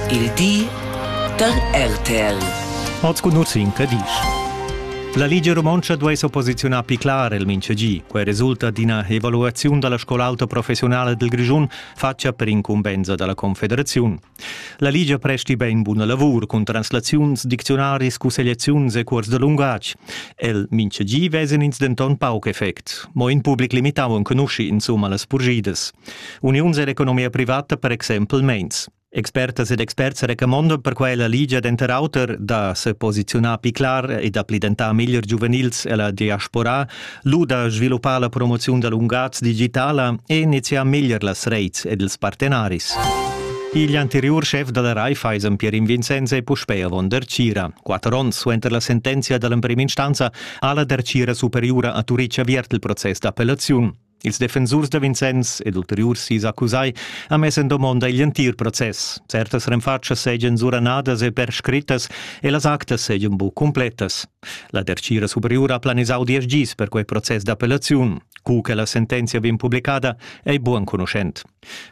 Il di da RTL. Hoz cugnuts incredisch. La Ligia Romontscha duai s'opposiziunar pli clar el mintgegi. Quai resulta d'ina evaluaziun da la scol'auta professiunala del Grischun fatga per incumbensa da la Confederaziun. La Ligia presti ben buna lavur cun translaziuns, dicziunaris, cussegliaziuns e cuors da lungatg. El mintgegi vesan ins denton pauc effect. Mo in public limitau enconusci insumma las purgidas. Uniuns ed economia privata per exempel meins. Expertas ed experts recamondan per quella ligia denter auter da seposiziunar pli clar e da pli dentar meglier giuvenils ella diaspora, lu da sviluppar la promoziun da lungatg digitala e iniziar meglier las reits ed ils partenaris. Igl anteriur schef dalla Raiffeisen, Pierin Vincenz, è puspei avon Dercira. Quatter onns suenter la sentenzia dall'emprema instanza ha la Dercira superiura a Turitg aviert il process d'appellaziun. Ils defensurs da Vincenz ed ulteriurs sis accusai han mess en domonda igl entir process. Certas renfatschas seigien suranadas e perscrittas e las actas seigien buc cumpletas. La dertgira superiura ha planisau diesch gis per quei process d'appellaziun. Cu che la sentenzia vegn publicada ei buc enconuschent.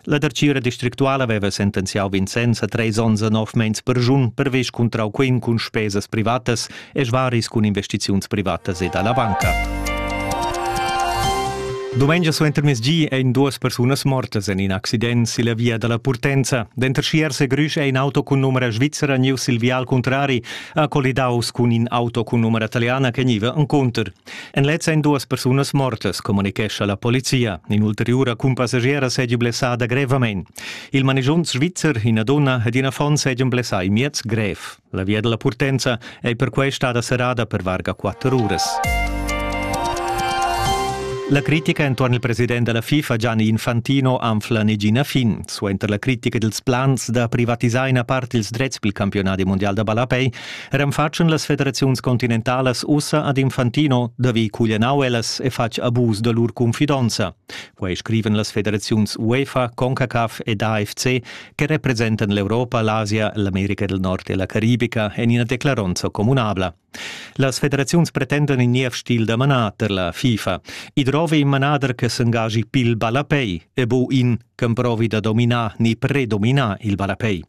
La dartgira districtuala veva sentenziau Vincenz a treis onns e nov meins perschun pervess cuntrau quem cun spesas privatas e svaris cun investiziuns privatas e dalla banca. Domengia suentermezgi ein duas persunas mortas en in accident silla via dalla Purtenza. Denter Schiers e Grüsch ein auto cun numera svizzera niu sil vial contrari ha colidaus cun in auto cun numera italiana che niva enconter. En lez èn duas persunas mortas, communichescha la polizia. In'ulteriura cumpassagiera seigi blessada grevamein. Il manigiont svizzer, ina donna ed in affon seigi blessai miez grev. La via della Purtenza ei perquei stada serrada per varga quatter uras. La critica entuorn il president della FIFA Gianni Infantino anfla negina fin. Suenter la critica dels plans da privatisar ina part ils drets pil campionat mondial da ballapei Renfatschen las federaziuns continentalas ussa ad Infantino da vi cuglianau ellas e fatg abus da lur confidonza. Quei scriven las federaziuns UEFA, CONCACAF ed AFC che representan l'Europa, l'Asia, l'America del Nord e la Caribica en ina declaronza communabla. Las federaziuns pretendan in niev stil da manader, la FIFA. I drovi in manader che s'engagi pil ballapei e bu in, che provi da dominar ni predominar il ballapei.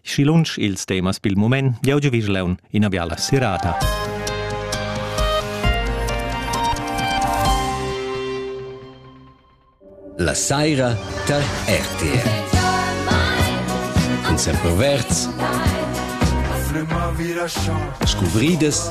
Schi lunsch ils temas pil mument, jau giuvischlaun ina biala serata. La saira tar RTR. Cun semperverds. Scuvridas.